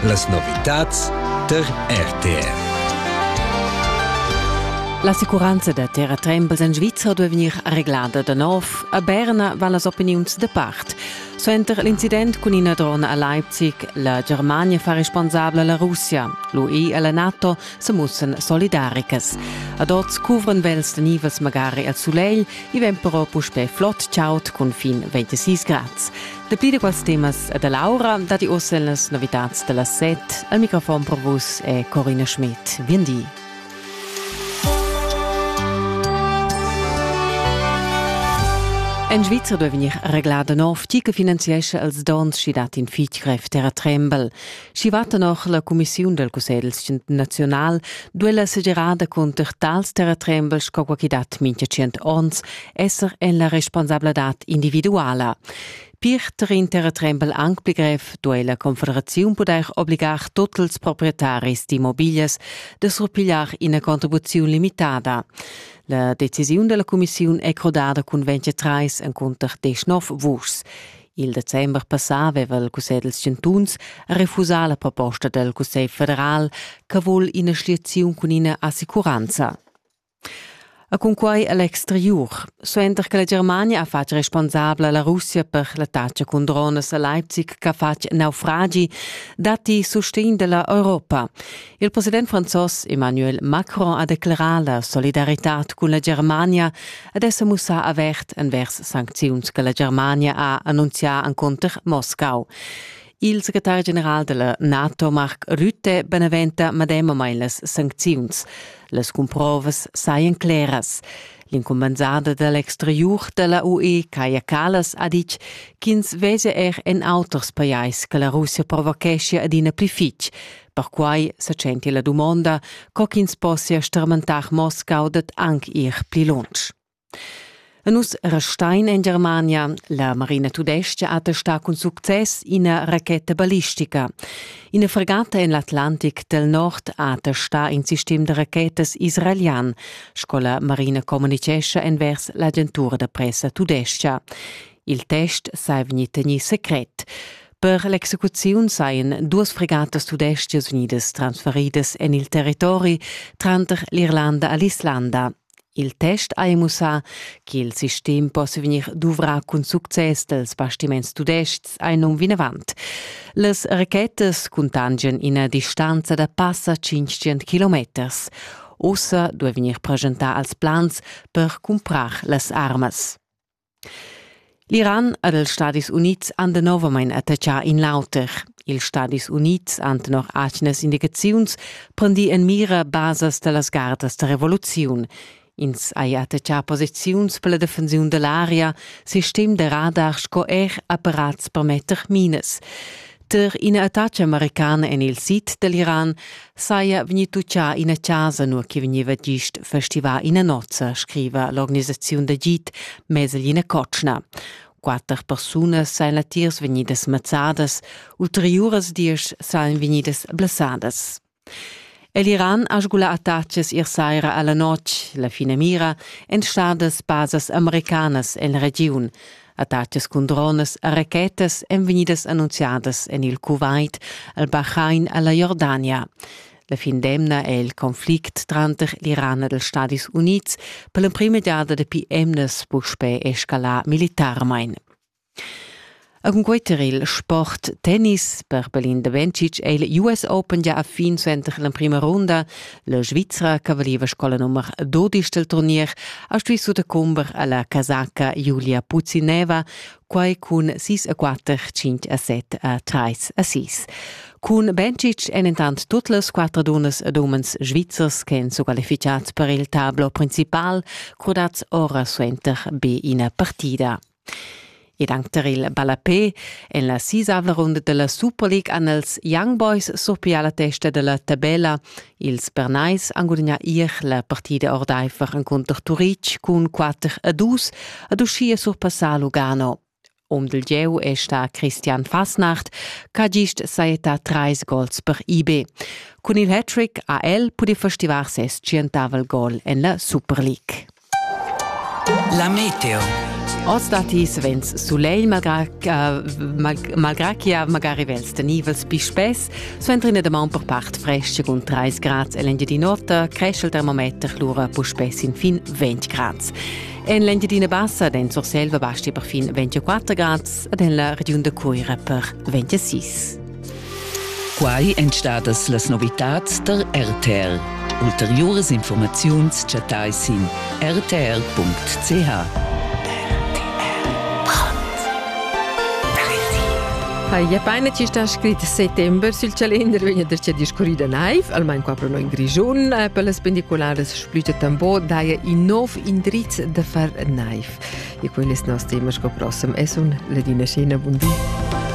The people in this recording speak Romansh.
Las novitads tar RTR. L'assicuranza da terratrembels en Svizra duai vegnir reglada da nov. A Berna van las opiniuns da part. Suenter l'incident cun ina drona a Leipzig, la Germania fa responsabla la Russia. L'UE e la NATO se mussan solidaricas. Ad oz cuvran vels da nivels magari al sulegl, i vegn però puspè flot chaud cun fin 26 grads. Dapi da quels temas e da l'aura datti oz las novitads da las set. Al microfon per vus è Corina Schmidt. Bien di. En Svizra duai vegnir reglà da nov, tgi che finanziescha els dons sch'i dat in fitg grev terratrembel. Schi va tenor la cumissiun del Cussegl naziunal duella segirada cunter tals terratrembels sco qualche dat mincha tschient ons esser en la responsabladad individuala. Pirter in terratrembel anc pli grev duei la Confederaziun pudair obligar tutti ils proprietaris d'immobilias de surpigliar ina contribuziun limitada. La decisiun della Commissiun è crodada cun 23 en cunter 19 vuschs. Il december passà aveva il Cussegl dals chantuns refusà la proposta dal Cussegl federal che vul ina schliaziun cun ina assicuranza. A cunquai a l'exteriur, suenter che la Germania ha fatg responsabla la Russia per l'attacca cun dronas a Leipzig ch'ha fatg naufragi, datti sustegn da la Europa. Il president franzos Emmanuel Macron ha declerà la solidaritad cun la Germania ed è sa mussà avert envers sancziuns che la Germania ha annunzià encunter Moscau. Il secretar general della NATO Mark Rutte beneventa medemamain las sancziuns. Las cumprovas sajan claras. L'incumbensada da l'exteriur da la UE, Kaja Kallas, ha ditg ch'ins vesia er en auters pajais che la Russia provocheschia adina pli fitg. Perquai sa tschenti la dumonda, co ch'ins possia stermentar Moscau dad anc ir pli lunsch. E nus restein en Germania. La Marina Tudestga attestà cun success ina racheta ballistica. Ina fregata en l'Atlantic del Nord ha attestà in sistem da rachetas israelian, sco la Marina communicescha envers l'agentura da pressa tudestga. Il test sa vegnì tegnì secret. Per l'execuziun sajan duas fregatas tudestgas vegnidas transferidas en il territori tranter l'Irlanda e l'Islanda. Il test ha mussà che il sistem possia vegnir duvrà cun success dals bastiments tudestgs a num vinavant. Las rachetas cuntangian ina distanza da passa 500 kilometers. Ussa duai vegnir presentà als plans per cumprar las armas. L'Iran ed els Stadis Unids han danovamein attaccà in l'auter. Ils Stadis Unids han tenor atgnas indicaziuns prendì en mira basas da las gardas da revoluziun. Ins ha attaccà posiziuns per la defensiun da l'aria, sistem da radar sco er apparats per metter minas. Tar ina attacca americana en il sid dall'Iran saja vegnì tutgà ina chasa, nua che vegniva gist festivà ina nozza, scriva l'organisaziun d'agid Meseline Kotschna. Quatter persunas sajan latiers vegnidas mazzadas, ulteriuras diesch sajan vegnidas blessadas. El Iran ha sgulà attachas ier saira a la notg. La finamira èn stadas basas americanas en la regiun. Attacas cun dronas e rachetas èn vegnidas annunziadas en il Kuwait, al Bahrain e la Jordania. La fin d'emna è il conflict tranter l'Iran ed els Stadis Unids per l'emprima giada dapi emnas puspè escalà militarmain. E cun quei tar il sport tennis per Belin da Bencic è il US Open gia a fin suenter l'emprima runda. La Svizra, che valiva scola nummer 12 del turnier, ha stuì sutacumber alla casaca Julia Puzineva, quai cun 6 a 4, 5 a 7 a 3 a 6. Cun Bencic èn intant tut las quattro dunnas ed umens svizzers che èn squalificads per il tablo principal, crudats ora suenter be ina partida. Ed anc tar il ballapè en la sisavla runda da la Super League han els Young Boys surpià la testa da la tabella. Ils Bernais han gudagnà ier la partida ordaifer encunter Turitg cun 4 a 2 ad uschia surpassà Lugano. Um dil gieu è sta Christian Fasnacht, ch'ha gist sajettà trais gols per IB. Cun il hat-trick ha el pudì festivar ses tschientavel gol en la Super League. La meteo. Oz datti savens sulegl, malgrà che malgrà chi ha magari vels tenivels pli spess, suenter ina damaun per part fresca cun 30 grads l'Engiadin'Ota cresce il termometer lura puspè sin fin 20 grads. En l'Engiadina Bassa den Surselva basti perfin 24 grads ed en la regiun da Cuira per 26. Quai èn stadas las novitads tar RTL. Ulteriuras informaziuns chattai sin rtr.ch. Haja paina chi sta scrit settember sül calender vegna da cha discurrida naiv, almain qua pro noi in Grischun. Per las pendicularas splüta tambo daja in nov indriz da far naiv. E quellas nos temas co prossem es un Ladina Scena, bun di.